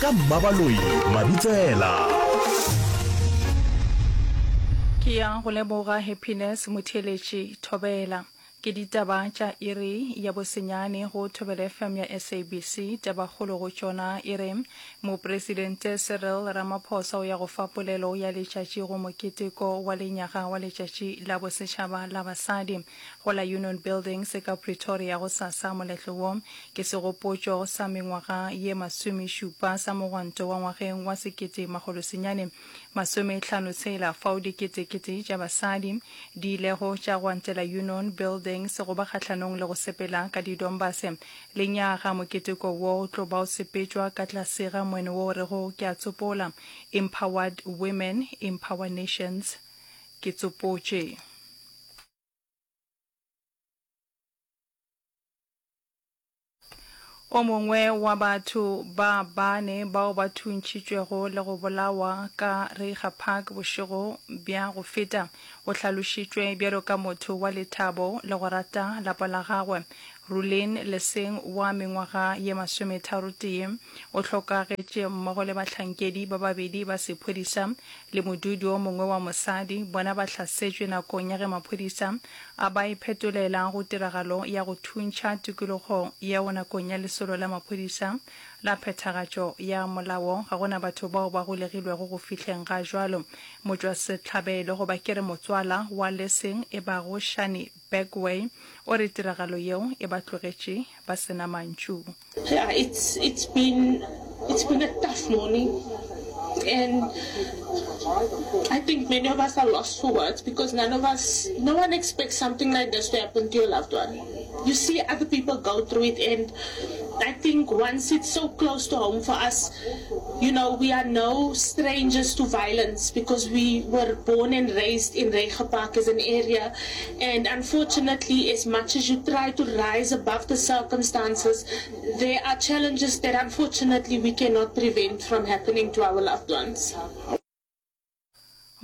ka mmabaloi mabitsela ke ya go leboga happiness motheletši thobela ke ditaba tša iri ya bosenyane go thobela fm ya sabc tabakgolo go tšona e re mopresidente cyril ramaphosa o ya go fa polelo ya letšatši go moketeko wa lenyaga wa letšatši la bosetšhaba la basadi go la Union Buildings ka Pretoria gosasa. Moletlo wo ke segopotšo sa mengwaga ye masomešupa sa mogwanto wa ngwageng wa sekete makgolo senyane masome hlano tshela, fao dikete-kete tša basadi di ilego tša gwantela Union Buildings go ba kgahlanong le go sepela ka didombase. Lenyaga moketeko wo o tlo ba o sepetšwa ka tlase ga moeno wo o rego Ke a tsopola, Empowered Women, Empower Nations, Ke tsopotše. O mongwe wa batho ba bane bao ba thuntšitšwego le go bolawa ka Reiger Park bošego bja go feta o hlalošitšwe bjalo ka motho wa lethabo le go rata lapa la gagwe. Rulin Leseng wa mengwaga ye masometharotee o hlokagetše mmogo le bahlankedi ba babedi ba sephodisa le modudi o mongwe wa mosadi bona ba hlasetšwe nakong ya ge maphodisa a ba iphetolela go tiragalo ya go thuntšha tikologo yeo nakong ya lesolo la maphodisa la phethagatšo ya molao ga go na batho bao ba golegilwego go fihleng ga jwalo motšwasehlabelo goba ke re motswala wa leseng e bago Shani Bagway o re tiragalo yeo e ba tlogetše ba se na mantšu. Yeah, it's it's been it's been a tough morning and I think many of us are lost for words because none of us, no one expects something like this to happen to your loved one. You see other people go through it and I think once it's so close to home for us, you know, we are no strangers to violence because we were born and raised in Reegerpark as an area And unfortunately, as much as you try to rise above the circumstances, there are challenges that unfortunately we cannot prevent from happening to our loved ones.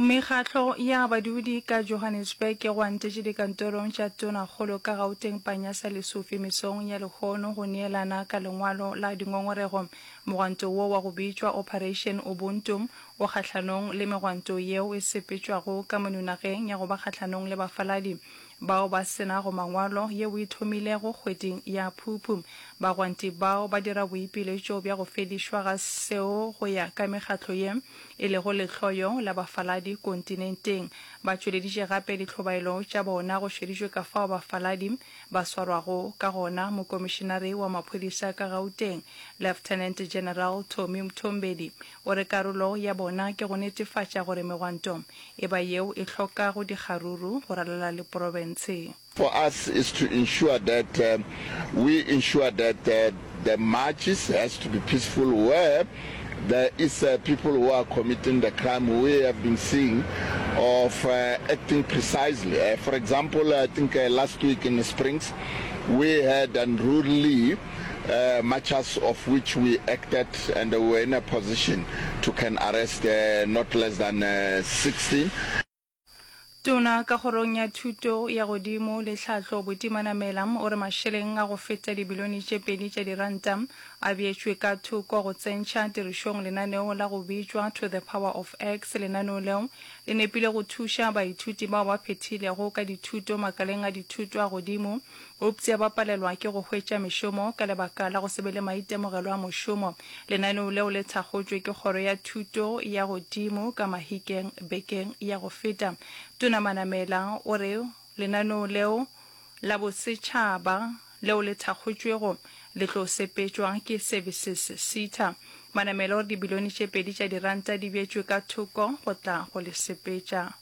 Mekgatlo ya badudi ka Johannesburg e gwantetše dikantorong tša tonakgolo ka Gauteng Panyaza Lesufi mesong ya lehono go neelana ka lengwalo la dingongorego. Mogwanto wo wa go bitšwa Operation Ubuntu O kgahlanong le megwanto yeo e sepetšwago ka monunageng ya go ba kgahlanong le bafaladi bao ba se nago mangwalo yeo e thomilego kgweding ya Phuphu. Bagwanti bao ba dira boipiletšo bja go fedišwa ga seo go ya ka mekgatlo ye e lego lehloyo la bafaladi kontinenteng. Ba tšweleditše gape ditlhobaelo tša bona go šeditšwe ka fao bafaladi ba swarwago ka gona. Mokomišinari wa maphodisa ka Gauteng, Lieutenant General Tommy Mthombedi, O re karolo ya bona ke go netefatša gore megwanto e ba yeo e hloka go dikga ruru go ralala le porofense. For us is to ensure that we ensure that the marches has to be peaceful where there is people who are committing the crime we have been seeing of acting precisely for example I think last week in Springs we had unruly muchers of which we acted and we were in a position to can arrest not less than 16. Tona ka Kgorong ya Thuto ya Godimo le Tlhahlo Buti Manamela o re mašeleng a go feta dibilione tše pedi tša diranta a beetšwe ka thoko go tsentšha tirišong lenaneo la go bitšwa To the Power of X. Lenaneo leo le nepile go thuša baithuti bao ba phethilego ka dithuto makaleng a dithuto a godimo Euptsa ba palelwa ke go hwetša mešomo ka lebaka la go se be le maitemogelo a mošomo. Lenaneo leo le thakgotšwe ke Kgoro ya Thuto ya Godimo ka Mahikeng bekeng ya go feta. Tona Manamela o re lenaneo leo la bosetšhaba leo le thakgotšwego le tlo sepetšwa ke Services Sita. Manamela o re dibilione tše pedi tša diranta di beetšwe ka thoko go tla go le sepetša.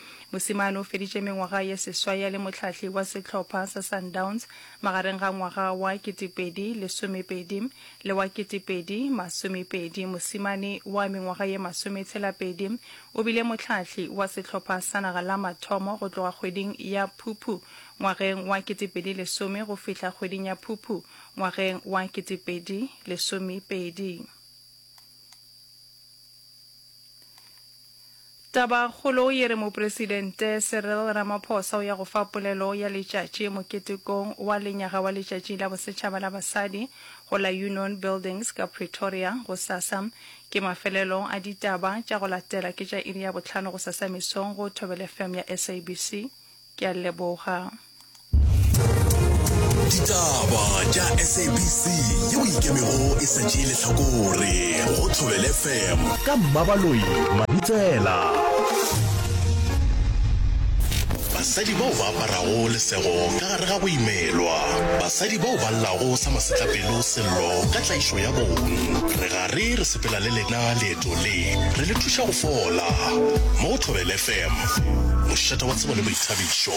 Mosimane o feditše mengwaga ye seswai a le mohlahli wa sehlopha sa Sundowns magareng ga ngwaga wa ketepedi lesomepedi le wa ketepedi masomepedi. Mosimane wa mengwaga ye masometshela-pedi o bile mohlahli wa sehlopha sa naga la mathomo go tloga kgweding ya Phuphu ngwageng wa ketepedi lesome go fihla kgweding ya Phuphu ngwageng wa ketepedi lesomepedi. Tabakgolo ye re Mopresidente Cyril Ramaphosa o ya go fa polelo ya letšatši moketekong wa lenyaga wa Letšatši la Bosetšhaba la Basadi go la Union Buildings ka Pretoria gosasa. Ke mafelelo a ditaba, tša go latela ke tša iri ya bohlano gosasa mesong go Thobel FM ya SABC. Ke a leboga. Ditaba tša SABC yeo ikemego e sa tšee lehlakore go Thobele FM ka Mmabaloi Mabitsela. Basadi bao ba aparago lesego ka gare ga go imelwa. Basadi bao ba llago sa masetlapelo sello ka tlaišo ya bong. Re gare re sepela le lena le Leeto le re le thuša go fola mo go Thobela FM, mošate wa tsebo le boithabišo.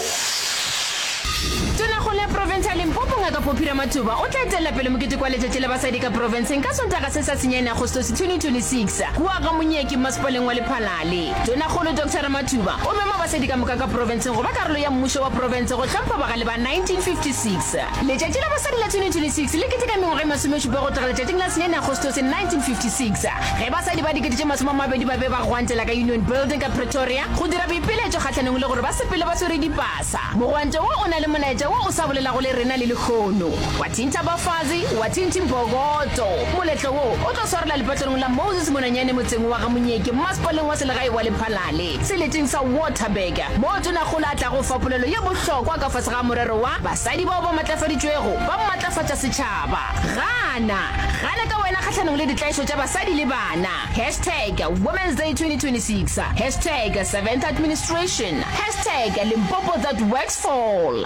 Tonakgolo ya profense ya Limpopo Ngaka Poppy Ramathuba o tla etelela pele mokete kwa Letšatši la Basadi ka Profenseng ka Sontaga se sa senyane Agostose 2026 kua ga Monyeki Mmasepaleng wa Lephalale. Tonakgolo Doctor Ramathuba o mema basadi ka moka ka profenseng go ba karolo ya mmušo wa profense go hlompha bagale ba 1956. Letšatši la Basadi la 2026 le keteka mengwaga e masomešupa go tloga letšatšing la senyaine Agostose 1956 ge basadi ba dikete tše masome a mabedi ba be ba gwantela ka Union Building ka Pretoria go dira boipiletšo kgahlanong le gore ba sepele ba swere dipasa. Mogwanto wo o na le molaetša wo o sa bolelago le rena le lehono. Wa thintha bafazi, wa thinthi mbokoto. Moletlo wo o tlo swarela lepatlelong la Moses Monanyane motseng wa ga Monyeke mmasepaleng wa selegae wa Lephalale. Seleteng sa Waterberger, moo Tonakgolo a tlago fa polelo ye bohlokwa ka fase ga morero wa Basadi bao ba Matlafaditšwego ba Matlafatša Setšhaba. Gana! Gana ka wena kgahlanong le ditlaišo tša basadi le bana! Hashtag Women's Day 2026 Hashtag Seventh Administration Hashtag Limpopo That Works Fall.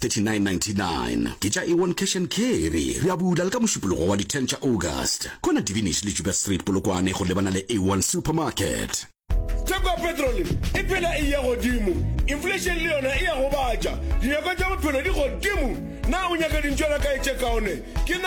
3999 ke tša Ewon Cash and Carry. Re a bula le ka Mošupologo wa di 10 tša August. Kwana Divinish le Juba Street, Polokwane go lebana le Ewon Supermarket. Theko ya petrole e phela e eya godimo. Inflation le yona e a gobatša. Dinyakwa tša bophelo di godimo. Na o nyaka dintšwana kae tše kaone? Ke